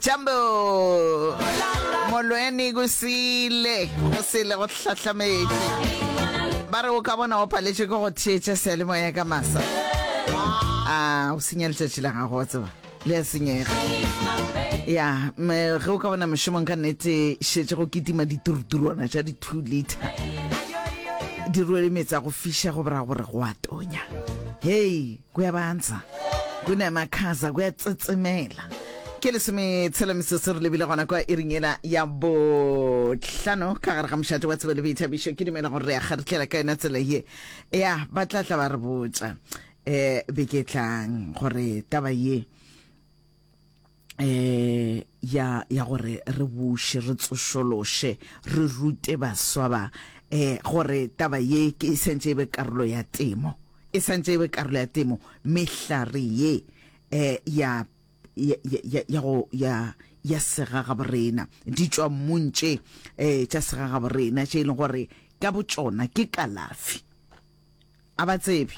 jambo molweni kusile kusile go hlahlametše ba re o ka bona o paletše ke go theetša sealemoya ka masa a o senya letšatši la gago wa tseba le a senyega ya ge o ka bona mošomong ka nnete šetse go kitima dituruturwana tša di-two liter di rwele metsa go fiša go bora gore go a tonya hei Kuyabandza, kunemakhaza, kuyatsetsemela. Ke lesome tshela mesese re lebile gona kwa iring yela ya bohlano ka gare ga mošate wa tsebo le boithabišo ke dumela gore re ya kgaritlela ka yona tsela ye ya ba tla tla ba re botša um beke tlang gore taba ye eh ya ya gore re buše re tsošološe re rute baswa ba eh gore taba ye ke e santse e be karolo ya temo e santse e be karolo ya temo mehlare ye eh ya ya ya ya go ya ya segaga borena di tšwa mmuntše eh tša segaga borena tše e leng gore ka botšona ke kalafi A ba tsebe.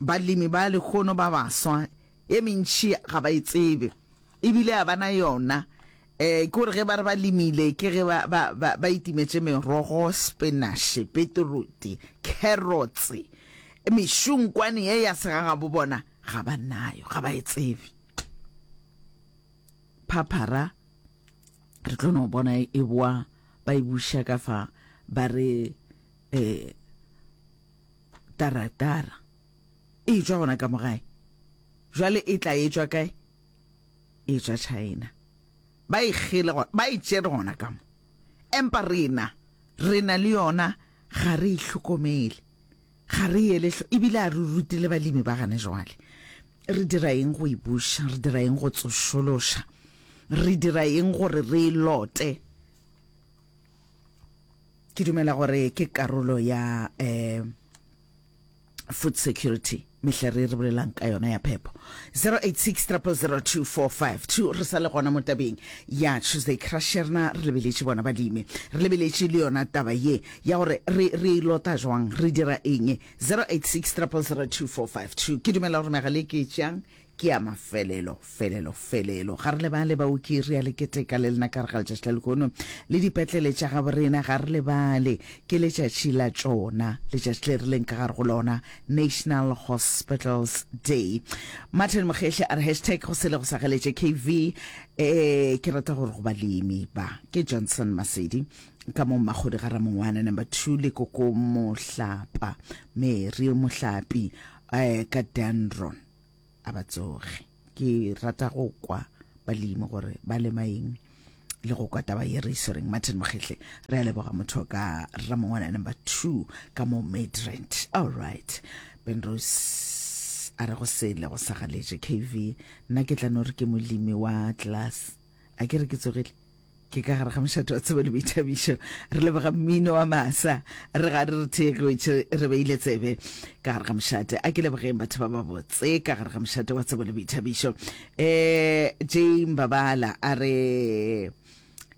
Balemi ba lehono ba baswa, e mentši ga ba e tsebe, e bile a ba na yona. E, ke gore ge ba re ba lemile, ke ge ba, ba, ba, ba itimetše merogo, spenaše, peteroti, kherotse, mešunkwane ye ya segagabo, bona, ga ba nayo, ga ba e tsebe. Phaphara, re tlo no bona e boa ba e buša ka fa, ba re eh, taratara e tšwa gona ka mogae jwale e tla e tšwa kae e tšwa china ba e kgele ba e tšere gona ka mo empa rena rena le yona ga re e hlokomele ga re ele ebile a re rutile balemi ba gane jwale re dira eng go e buša re dira eng go tsošološa re dira eng gore re e lote ke dumela gore ke karolo ya um food security mehle re re bolelang ka yona ya phepho 0860002452 re sa le gona mo tabeng ya tuesday crusherna re lebeletše bona balemi re lebeletše le yona taba ye ya gore re re e lota jwang re dira eng 0860002452 ke dumela gore megale ke tšang Ke ya mafelelo, felelo, felelo. Ga re lebale, baoki, re a le keteka le lena ka re ga letšatši la lehono. Le dipetlele tša gabo rena, ga re lebale, ke letšatši la tšona, letšatši le re leng ka gare go lona, National Hospitals Day. Martin Mokgehli a re hashtag go sele go sa galetše KV. Eh, ke rata gore go balemi ba. Ke Johnson Masedi ka mo Mmakgodi ga Ramongwana number two le koko Mohlapa, Mary Mohlapi eh, ka Danron. a ba tsoge ke rata go kwa balemi gore ba lema eng le go kwa taba ye re e swereng martin mokgetle re a leboga motho ka ramongwana number two ka mo madrant all right benrose a re go sele go sa galetše kv nna ke tla no re ke molemi wa class a ke re ke tsogile ke ka gare ga mošate wa tsebo le boithabišo re lebega mmino wa masa re ga re re theegetše re beile tsebe ka gare ga mošate a ke lebogeng batho ba babotse ka gare ga mošate wa tsebo le boithabišo um jame babala a re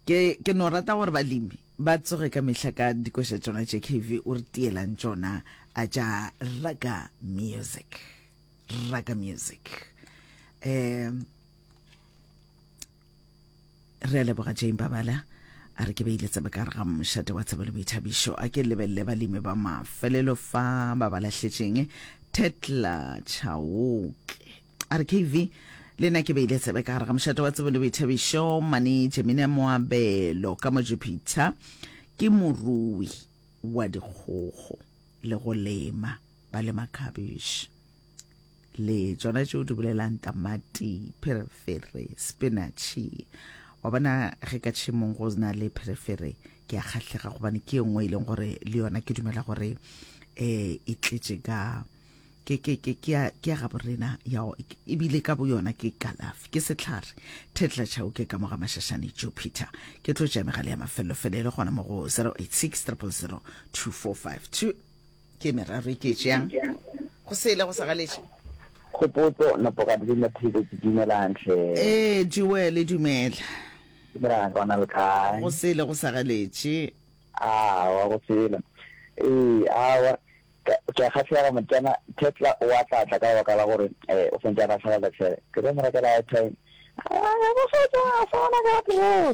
ke, ke no rata gore balemi ba tsoge ka mehla ka dikoša tšona tše kv o re tielang tšona a tša raka music raka music um re a leboga jane babala a re ke beile tsebe ka re ga mošate wa tsebe le boithabišo a ke lebelele balemi ba mafelelo fa ba ba lahletšeng tetla chaoke a re kv le nna ke beile tsebe ka re ga mošate wa tsebe le boithabišo mane jemina moabelo ka mojupiter ke morui wa dikgogo le go lema ba lema cabbage le tsona tšeo di bolelang tamati pherefere spinatšhe wa bona ge ka tšhemong go na le pherefere ke a kgahlega gobane ke e nngwe e leng gore le yona ke dumela gore um e tletše ka ke ke ke ke ya ke ya ga borena ya ebile ka bo yona ke kalafi ke setlhare thetla chao ke ka moga mashashane jupiter ke tlo tša megale ya mafelelo fele e le gona mo go 086 000 2452 ke meraro e ke tšeang go sele go sa galetše Khopotso, Napokane le Mathebe ke dumelang hle. Ee, Joele dumela. Dumelang ka ona le kae? Go sele go sa galetše. Awa go sele. Ee, awa ke a kgahlega motsana Tetla o a tlatla ka lebaka la gore eh o sentse a latlhela lefere. Ke tlo mo rekela airtime. Ah, go fetša a sa bona ka tloga.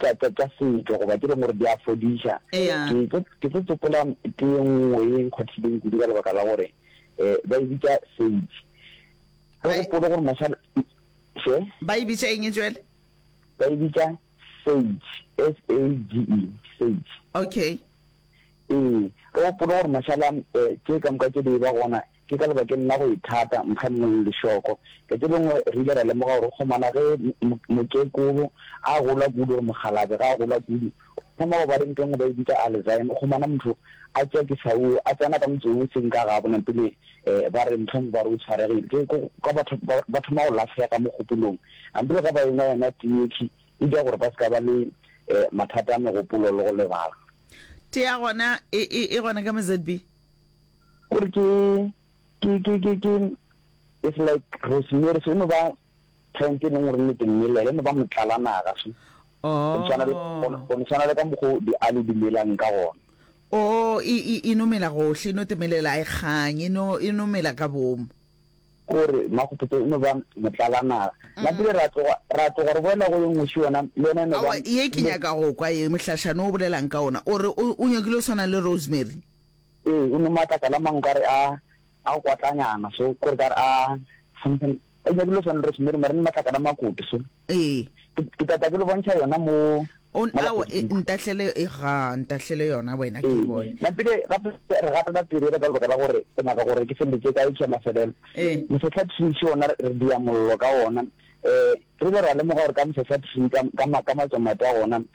tša, tša, tša setšo goba tše dingwe gore di a fodiša. Eya. Ke tlo, ke tlo tsopola tee nngwe ye e nkgothileng kudu ka lebaka la gore um ba e bitša sage. O Ba e- gopole gore mosala, she? Ba e bitša eng e jwale? Ba e bitša sage, S-A-G-E, sage. Okay. Ee, re gopole gore mashala um tše ka moka tše di e ba gona Ke ka lebakeng la go ithata mokgannong lešoko. Ka tše dingwe re ile ra lemoga gore gomana ge mokekolo a gola kudu gore mokgalabje ga a gola kudu, o thoma go ba le nto engwe ba e bitša Alzheimer, gomana motho a tšea kisau, a tsena ka motse wo e seng ka gabo na pele ba re mohlomongwe ba re o tshwaregile. Ke kwa ba thoma go lahlega mogopolong na pele ga ba enwa yona tiyekhi e dira gore ba se ka ba le mathata a megopolo le go lebala. Tea gona e gona ka mo ZB. Ke re ke, ke, ke, ke, ke, it's like Rosemary, so e no ba plant e leng gore le dimela, e no ba motlalanaga, so. Oh. Go no tshwana le ka mokgo diali di melang ka gona. Oh, e, e, e no mela gohle, e no temelela e kgang, e no, e no mela ka bomo. Gore makgopotso e no ba motlalanaga. Mm. Nna pele ra tloga, ra tloga re boela go e nngwe šo yona, le yona e no ba. Aowa, ye ke nyaka go kwa ye, mohlašana o bolelang ka ona, o re o, o nyakile go swana le Rosemary. Ee, e no matlakala mang kare a a kwatlanyana so kore kare a something e nyakile go swana rosemary mara ne matlakala a makutu so Ee. ke ke tata ke lo bontšha yona mo O mo ao e, lapeng. ntahlele e ga ntahlele yona wena ke e bone. napile gape re gatela pele re ka lebaka la gore ke nyaka gore ke feletse ka e tšhwa mafelelo Ee. mosetlha tshwitšhi ona re re dia mollo ka ona um re ile ra lemoga gore ka mehla sa three ka, ka ma, ka matsomate a gona um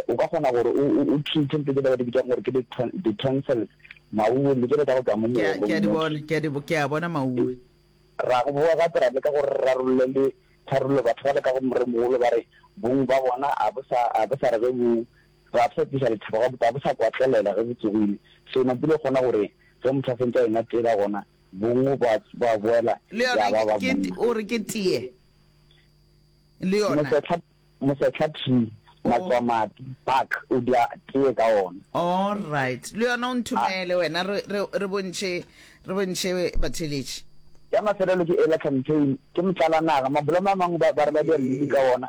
o ka kgona gore o, o, o treat ntho tse ba di bitsang gore ke di, di tonsils mauwe le jalo ka go tla mo Ke a, ke a di molomo bona, ke a di, bo- ke a bona mauwe. ra go boa gape ra leka gore re rarolle le tharollo batho ba leka go moremogolo ba re bong ba bona a bo sa a bo sa re ge bo ga bo sa tlisa lethabo ga bo ga bo sa kwatlelela ge bo tsogile so na pula o kgona gore ge motho a sentse a ena tela gona Bongwe ba, ba boela Le ya yona ba ke, ba ke, monna. o re ke teye. Le yona. Mosetlha, mosetlha tree, Oh. matswamati, bark, o dia teye ka ona. Alright. Le yona o nthomele wena re, re, re bontšhe, re bontšhe batheeletši. Ya mafelelo ke ela, campaign, ke motlalanaga. Mabolomo a mangwe ba, ba re ba dia mmidi ka ona.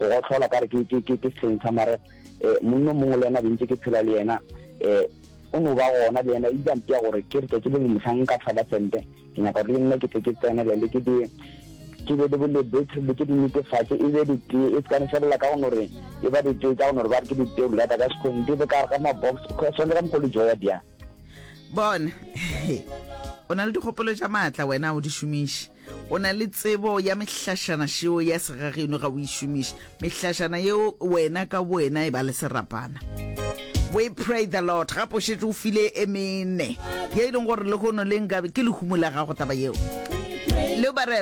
Go gohlola ka re ke, ke, ke, ke sehleng sa mare eh, monna o mongwe le yena bentse ke phela le yena eh, o no ba gona le yena, e ile a mpea gore ke re tšatši le lengwe mohlang nka thaba sempe, ke nyaka gore le nna ke tle ke tsenelele ke di ke be le bolebethe le ke di netefatše e be ditee e sekane felela ka go no re e ba ditee tša go no re ba re ke ditee o lata ka sekgong di be ka re ga mabox because swanetse ka mokgwa le joya bjang bona o na le dikgopolo tša maatla wena o di šomiše o na le tsebo ya mehlašana šeo ya segageno ga o e šomiše mehlašana yeo wena ka wena e ba le serapana we pray the lord ga pošetše o file e mene ye e leng gore le gono le nkabe ke lehumo la gago taba yeo le bare